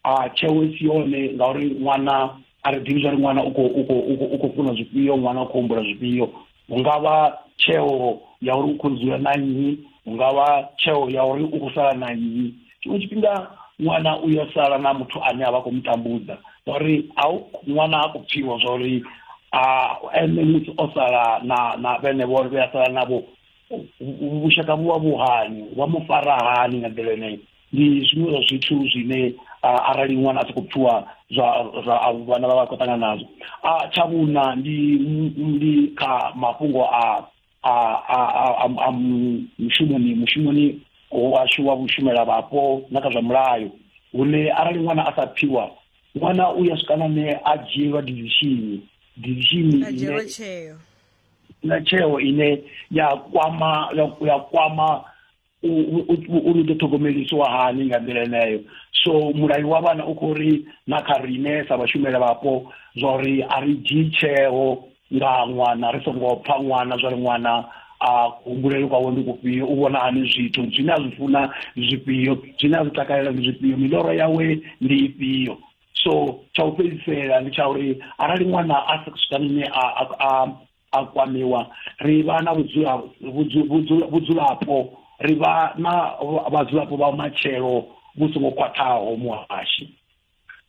a tsheo i si yone ngauri ṅwana a ri ḓivhi zwa uri ṅwana u khou u khou u khou funa zwifhio ṅwana u khou humbula zwifhio hungavha tsheo ya uri u khou dzula na nnyi hungavha tsheo ya uri u khou sala na nnyi tshiṅwe tshifhinga ṅwana u ya sala na muthu ane a vha khou mu tambudza ngauri a ṅwana ha khou pfhiwa zwa uri a ene musi o sala na na vhene vho vhe a sala navho vhushaka vhu vha vhu hani vha mu fara hani nga nḓila yeneyo ndi zwiṅwe zwa zwithu zwine arali ṅwana a sokou pfiwa zwa zwa vhana vha vha khou ṱangana nazwo tsha vhuṋa ndi ndi kha mafhungo a a a a mushumoni mushumoni washu wa vhushumela vhapo na kha zwa mulayo hune arali ṅwana a sa pfiwa ṅwana u ya swika nane a dzhielwa dizishini dizishini na tsheo ine ya kwama ya kwama uri ḓo ṱhogomelisiwa hani nga nḓila eneyo so mulayo wa vhana u khou ri na kha rine sa vhashumela vhapo zwa uri a ri dzhii tsheo nga ṅwana ri songo pfha ṅwana zwa ri ṅwana a humbulele kwawe ndi kufhio u vhona hani zwithu zwine a zwi funa zwifhio zwine a zwi takalela ndi zwifhio miloro yawe ndi ifhio so tsha u fhedzisela ndi tsha uri arali ṅwana a swika nne a a kwamiwa ri vha na vhudzulapo ri vha na vhadzulapo vha matshelo vhu songo khwaṱhaho muhashi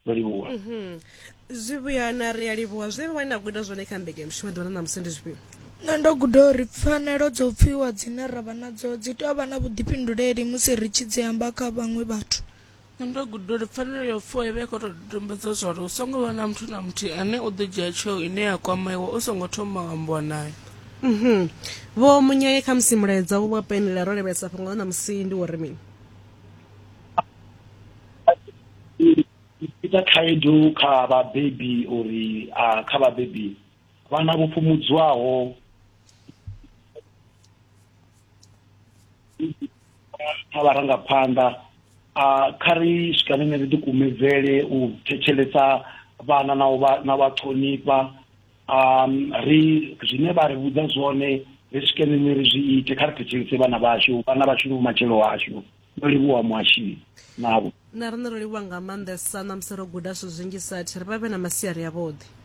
ndo livhuwa mhm. zwivhuya na ri a livhuwa zwe vha na guda zwone kha mbekanyamushumo ḓuvha na ṋamusi ndi zwifhio nṋe ndo guda uri pfanelo dzo pfiwa dzine ra vha nadzo dzi tou vha na vhuḓifhinduleli musi ri tshi dzi amba kha vhaṅwe vhathu ndo guda uri pfanelo yo fuwa i vha i khou tou dodombedza zwa uri hu songo vha na muthu na muthihi ane u ḓo dzhia tsheo ine ya kwamaiwa u songo thoma wa ambiwa naye mhm. vho munyaye kha musi mulaedza wo wa penela ro lavhelesa fhungo ḽa ṋamusi ndi wo ri mini ita khaedu kha vhabebi uri kha vhabebi vhana vho fhumudzwaho kha vharangaphanḓa kha ri swikanene ri ḓikumedzele u thetshelesa vhana na vha na vha ṱhonifha um ri zwine vha ri vhudza zwone ri swikanene ri zwi ite kha ri thetshelese vhana vhashu vhana vhashu ndi vhumatshelo hashu ndo livhuwa muhashini navho na riṋe ro livhuwa nga maanḓesa na musi ro guda zwithu zwinzhi sathi ri vha vhe na masiari avhuḓi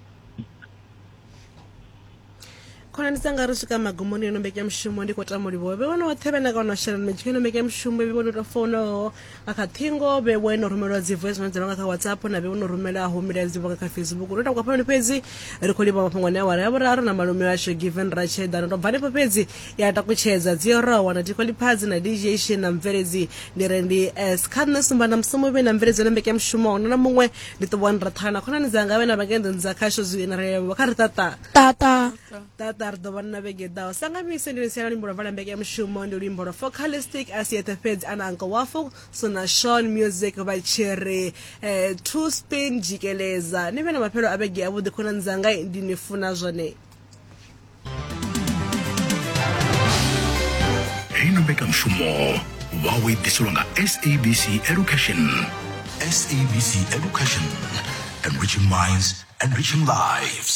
khonani dzanga ri swika magumoni yo no mbekea mushumo ndi khou tama livhuwa vhe wono woṱhe vhe na kana shelelo mitshi yo no mbekea mushumo vhe wono tou founaho nga kha ṱhingo vhe wo no rumelwa dzi voice note nga kha whatsapp na vhe wono rumelaho milaedza dzi nga kha facebook ro takwa phamani fhedzi ri khou livhuwa mafhungo ne awara ya vhuraru na malume ashu given ratsheda no to bva hanefho fhedzi ya takutshedza dzi oraho na tikhwaliphazi na dj she na mubveledzi ndi re ndi s kha nṋe sumba na musomo vhe na mubveledzi na mbekanyamushumo hone na muṅwe ndi ṱuwani raṱhana na khonani dzanga vhe na vhakenḓoni dza khasho zwi na relevho kha ri ṱaṱa ṱaṱa ṱaṱa ri ḓo vhana na vhege ḓaho sanga mise ndi lisiya na luimbo lwa vala mbekanyamushumo ndi luimbo lwa focalistic a si eṱhe fhedzi ana anko wafu so na shon music vha tshi ri um two spin jikeleza ni vhe na maphelo a vhege avhuḓi khonani dzanga ndi ni funa zwone hei na mbekanyamushumo vhawo i ḓiselwa nga sabc education sabc education enriching minds enriching lives